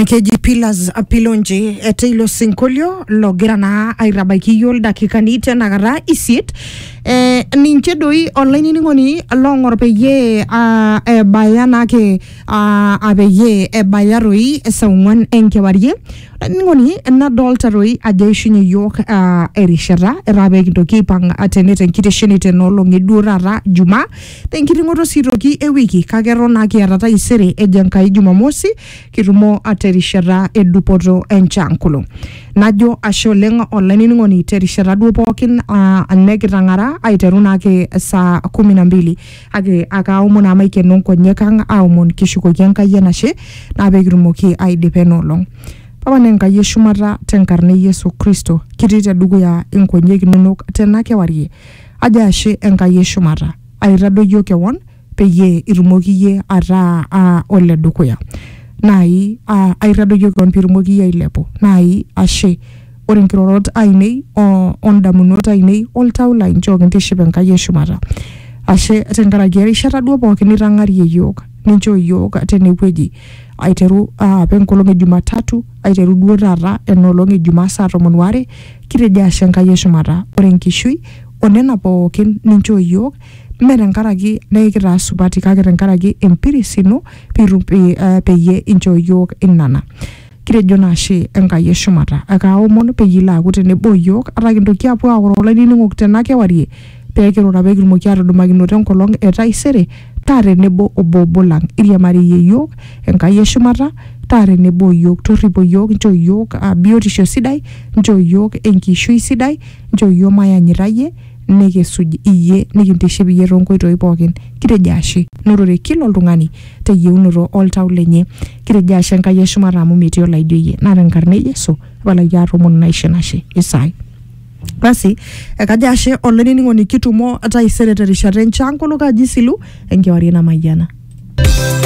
Keji Pillars Pilonji etaa ilo sinkolio logira naa aitabaiki iyiok ildakikani tenakata isiet. Eh, ninche doi olainining'oni long'or peyie ah, ebaya naake ah, ah, peyie ebaya toi saa ong'uan enkewarie. Olainining'oni nadolta toi ajo eishunye iyiok ah, erishata etaa pekintoki aipang' tene tenkitesheni tenolong'i duo taata Jumaa. Tenkiting'oto sii toki e wiki kake eton naa kiata taisere ejo Enkai Jumamosi kitumo terishata e dupoto enchaa nkolong. Najo ashe oleng olainining'oni terishata duo pookin aa nekitang'ara aiteru naake saa kumi na mbili kake akaomon naa maikeno nkonyek ang aomon kishukoki Enkai enashe naa peekitumoki aidipa ena olong. Papa naa Enkai eshumata tenkarna e Yesu Kristo kitii tedukuya nkonyek inonok tena kewarie Ajo ashe Enkai e shumata, aitadoyio kewon peyie itumoki iyie ataa aa ole dukuya. Naai aa aitadoyio kewon pitumoki iyie ailepu. Naai ashe ore nkirorot ainei o ndamunot ainei o ltau lai nchooki intiship Enkai e shumata. Ashe tenkaraki erishata duo pooki nitang'arie iyiook, ninchoo iyiook tene wueji aiteru apa enkolong e jumatatu Aiteru duo taata ena olong e Jumaa saa tomon waare, kitejo ashe Enkai e shumata ore enkishui o nena pooki ninchoo iyiook mme tenkaraki nekitaa supati kake tenkaraki empiris ino peyie inchoo iyiook nena. Kitejo naa ashe Enkai e shumata. Ekaaomon peyie ilo aaku tenebo o iyiook ata kintoki aapuo aoro olainining'oni tena kewarie pee kirura pee kitumoki aatudumakinoto enkolong e taisere taa tenebo obo obo lang iriamariyie iyiook Enkai eshumata taa tenebo iyiook torripo iyiook nchoo iyiook uh, biotisho sidai nchoo iyiook enkishui sidai nchoo iyiook mayanyita iyie nikisuj iyie nikintiship iyie toonkoitoi pookin kitejo ashe norore kila oltung'ani teyieunoto oltau lenye kitejo ashe Enkai eshumata amu metii olaijo iyie naa tenkarna e Yesu tapalaki aatoomonu naisho enashe Isai Basi ekajo ashe olainining'oni kitumo taisere terishata enchankolok aji silu enkewarie namayiana.